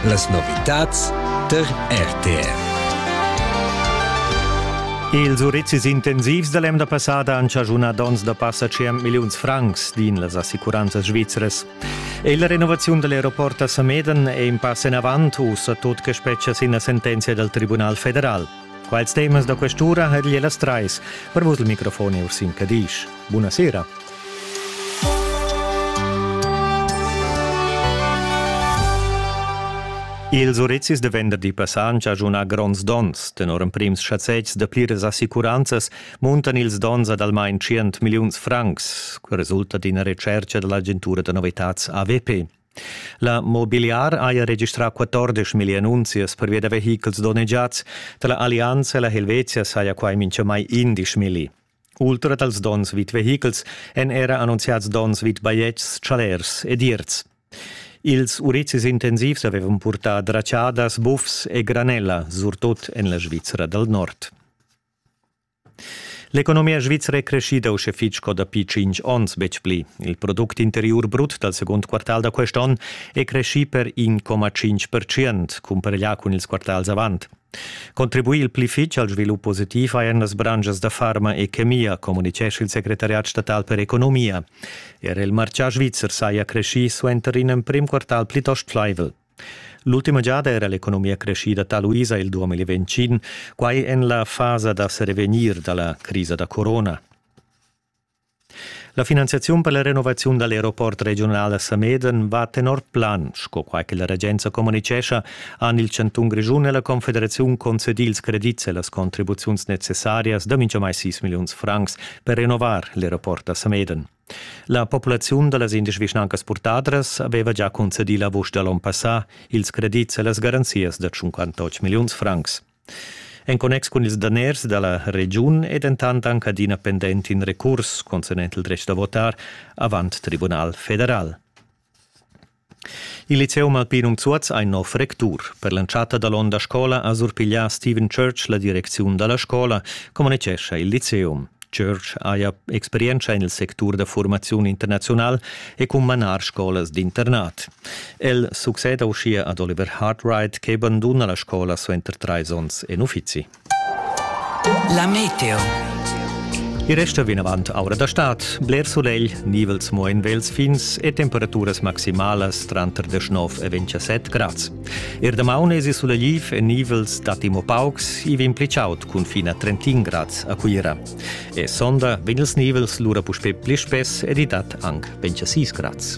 Las novitads tar RTR. Ils urizis intensivs da l'emda passada han chaschunà donns da passa 100 milliuns francs, din las assicuranzas svizras. E la renovaziun da l'aeroport a Sameden è in pass enavant, ussa tut che spetga sin la sentenzia dal Tribunal federal. Quals temas da quest'ura ha el las trais per vos il microfon e Ursin Cadisch. Buona sera. Ils urizis de venderdi passant giajuna gronds dons. Tenor emprims schazetgs de pliras assicuranzas muntan ils dons ad almain 100 milliuns francs, que resulta d'ina recerca dell'agentura de novitads AVP. La Mobiliar haja registrà 14 mil annunzias pervia da vehichels donnegiads. Da la Allianza la Helvetia saja quai mintgamai 11 milli. Ultra dals donns vid vehichels èn era annunziads donns vid bajetgs, chalers ed ierts. Ils urizis intensivs avevan purtà dratschadas, bufs e granella, surtut en la Svizra dal Nord. L'economia svizra è creschida uschè fitg sco dapi tschintg onns, betg pli. Il product interiur brut dal segund quartal da quest onn è creschì per 1,5 percent, cumpareglià cun ils quartals avant. Contribuì il pli fitg al svilup positiv hajan las branschas da farma e chemia, communitgescha il secretariat statal per economia. Er il martgà svizzer saja creschì suenter in emprim quartal plitost flaivel. L'ultima giada era l'economia creschida taluisa il 2025, quai en la fasa da serevegnir da la crisa da corona. La finanziaziun per la renovaziun dall'aeroport regional a Sameden va tenor plan, sco quai che la regenza communicescha, han il chantun Grischun e la confederaziun concedì ils credits e las contribuziuns necessarias da mintgamai 6 milliuns francs per renovar l'aeroport a Sameden. La populaziun da las indesch vischnancas purtadras aveva già concedì la vusch da l'onn passà ils credits e las garanzias da 58 milliuns francs. En connex cun ils daners da la regiun è dentant anc adina pendent in recurs concernent il dretg da votar avant tribunal federal. Il liceum alpinum Zuoz ha in nov rectur. Per l'entschatta dall'onda scola ha surpiglià Steven Church la direcziun dalla scola, communicescha il liceum. Church haja experientscha en il sectur da formaziun internaziunal e cun manar scolas d'internat. El succeda uschia ad Oliver Hartright che banduna la scola suenter trais onns en uffizi. La meteo. I resta vinavant aura da stad, bler sulegl, nivels mo en vels fins e temperaturas maximalas tranter 19 e 27 grads. Er damaun esi sulegliv e nivels datti mo paucs, i vegn pli chaud cun fin a 31 grads a Cuira. E sonda vegn ils nivels lura puspè pli spess ed i dat anc 26 grads.